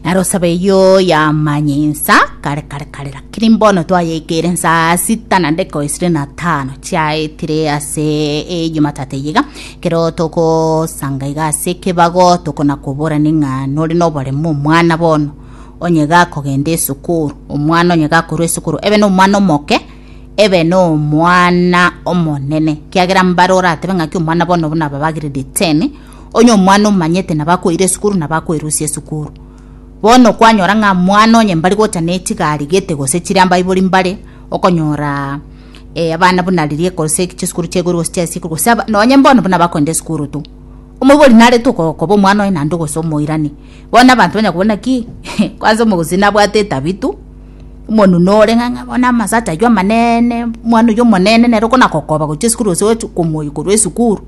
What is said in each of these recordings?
naro saba eyo yamanya ensa kare kare kare lakini mbono twayeikere nsa sita na ndeko isire na tano chiaetire ase ejumatatu eyiga kero togosanga iga ase ekebago tokona kobora ning'a nore noboremo omwana bono onye gakogenda esukuru omwana onye gakorwa esukuru ebe nomwana omoke ebe nomwana omonene kiagera mbare oratebe ng'aki omwana bono buna aba bagiredi ten Onye omwana omanyete na bakoira esukuru na bakoirusia esukuru. Bono kwanyora ng'a mwana onye mbari gocha ne chigari gete gose chire ambaibori mbare, okonyora eh, abana buna riria gose chisukuru chia igoro gose chia ase igoro gose aba- nonye mbono buna bakoenda esukuru tu. Omoibori narete oko- koba omwana oye naende gose omoirani. Bono abanto banya kobua naki kwanza omogusii nabwate etabi tu, omonunu ore ng'a ng'a bono amasacha aywo amanene, omwana oywo omonene nere okona kokoba gochia esukuru gose gochi komoyia korwa esukuru.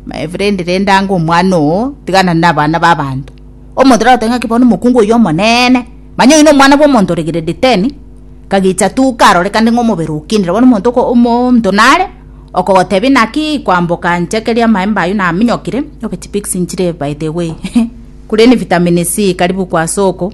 My friend rende ango omwana oo, tigana nabana babanto. Omonto taragoteba ng'aki bono omokungu oyio omonene, manya oyio nomwana bwomonto ore grade ten, kagicha tu karorekane ng'a omobere okinire. Bono omonto oko omonto nare, okogotebia naki kwamboka nchekeria amaemba ayio naminyokire, obe chipigs nchire by the way, kuria ne vitamin C karibu kwa soko.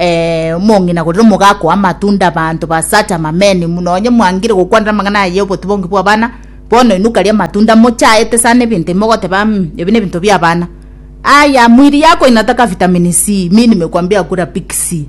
Ee, omong'ina korende omogaka amatunda abanto ba Satan mameni muno onye mwangire gokwanera amang'ana aya y'obotubongi bw'abana bono inwe karia amatunda mochaete sana ebinto imogoteba mm ebi nebinto bi'abana aya mwiri yako inataka vitamin C mi nimekwambia kula big C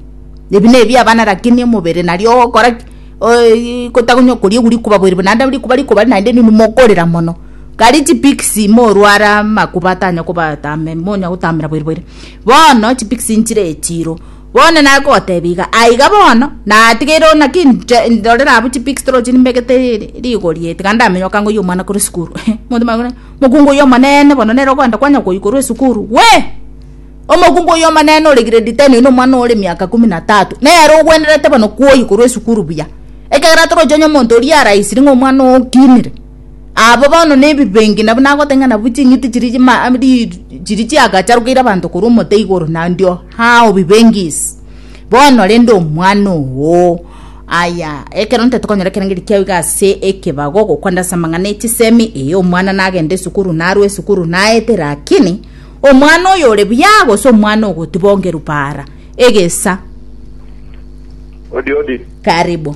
ebi nebiabana lakini omobere nario ogokora ki oii gotagonya okoria ebu rikuba bweri bo naende rikuba rikuba naende rinde mokorera mono karie chi big C morwara amakuba atanya kobatambe monya gotamera bweri bweri. Bono chipikisi nchire echiiro. Bono nare kogoteebia iga, aiga bono, natigeire oo, naki inche ndorere abwo chipikisi toroche nimbegete ri- rigori eye, tiga ndamenye okangoyia omwana korwa esukuru. Omonto omonyene akoira, Mokungu oyio omonene bono nere okoenda kwanya koyia korwa esukuru? Gwe! Omokungu oyio omonene ore grade ten oino omwana ore emiaka ikomi na tatu, nere ogwenerete bono kwoyia korwa esukuru buya, ekiagera torochi onye omonto oria araisire ng'a omwana oo okinire. Aba bono nebibengi nabo nagoteng'ena nabu ching'iti chiria chima ri chiria chiagacharokeire abanto korwa omote igoro nandio how bibengi is bono rende omwana oo aya ekero ntaete konyora ekerangeri eria kiao iga ase ekebago ogokwa nde ase amang'ana e chisemi eeh omwana nagenda esukuru narwa esukuru naete lakini omwana oyo ore buya gose omwana ogotiba ongeru para egesa Odi odi. karibu.